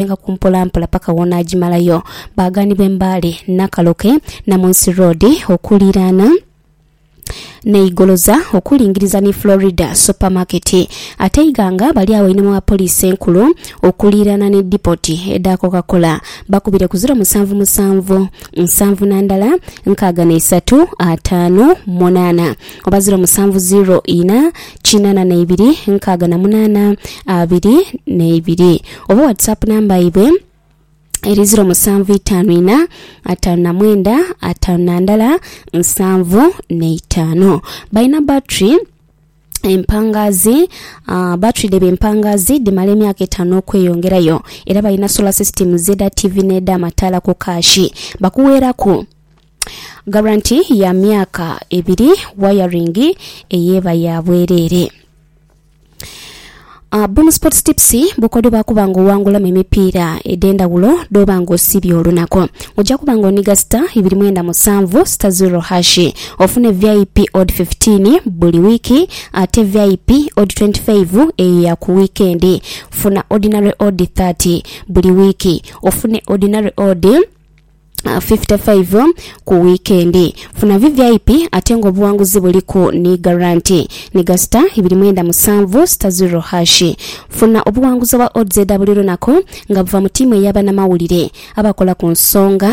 Aghalenga ku mpolampola paka w'onaagimalayo. Baaganibwa e Mbale, Nakaloke, Namunsi Road okuliiraana n'eigoloza okulingiriza ni Florida Super Market. Ate e Iganga bali agho einhuma wa Poliisi Enkulu okuliiraana ni Dipoti edha Coca-Cola. Bakubire ku ziro musanvu musanvu, nsanvu na ndala, nkaaga na isatu, ataanu, munaana. oba ziro musanvu ziro ina kinana na ibiri nkaaga na munana abiri na ibiri oba whatsapp number yaibwe eri ziro musanvu itanu ina atanu na mwenda atanu na ndala nsanvu na itanu balina battery empangazi uh, battery dhebye empangazi dhimala emyaka etano okweyongerayo era balina solar system zeda tv neda mataala ku kaashi bakuweeraku Garanti ya myaka ebiri wayaringi eyeba ya bwerere. Uh, Boom Sports Tips bukodyo bwa kuba nga owangulamu emipiira edh'endhawulo dh'oba nga osiibye olunaku. Oja kuba nga oniga star ibiri mwenda musanvu star zero hashi ofune vip odd 15 buli wiiki ate vip odd 25 eyo ya ku wiikendi. Funa ordinary odd 30 buli wiiki ofune ordinary odd 55 ku wiikendi. Funa VVIP ate ng'obuwanguzi buliku ni garanti. Ni gasita ibiri mwenda musanvu sita ziro hashi. Funa obuwanguzi obwa odds edha buli lunaku nga buva mu tiimu eya banamawulire abakola ku nsonga.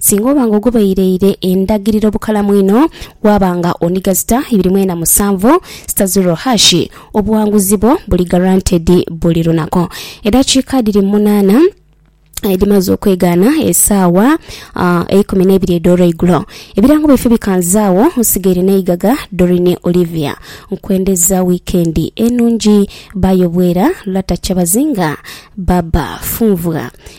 Singa oba nga ogobeireire endagiriro bukalamu inho, waaba nga ondiga zita ibiri mwena musanvu, zita zero hash, obuwanguzi bwo buli guaranteed buli lunaku. Edhakiika dhiri munaana edhimaze okwegaana esaawa eikumi neibiri edh'olweigulo, ebirango byaife bikanzaagho. Nsigaire n'eigaga Doreen Olivia. Nkwendheza wiikendi enhungi. Bye bwera. Lata Kyabazinga. Baba Funvwa.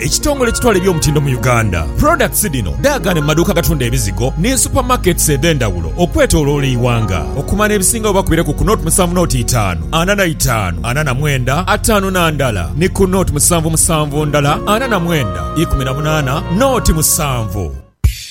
Ekitongole ekitwala eby'omutindo mu Uganda, products dhino dhaagane mu maduuka agatunda ebizigo ni super markets edhendhawulo okwetoloola eighanga. Okumanya ebisingawo bakubire ku ku nought musanvu nought itaanu ana na itaanu ana na mwenda ataanu na ndala ni ku nought musanvu musanvu ndala ana na mwenda ikumi na munaana nought musanvu.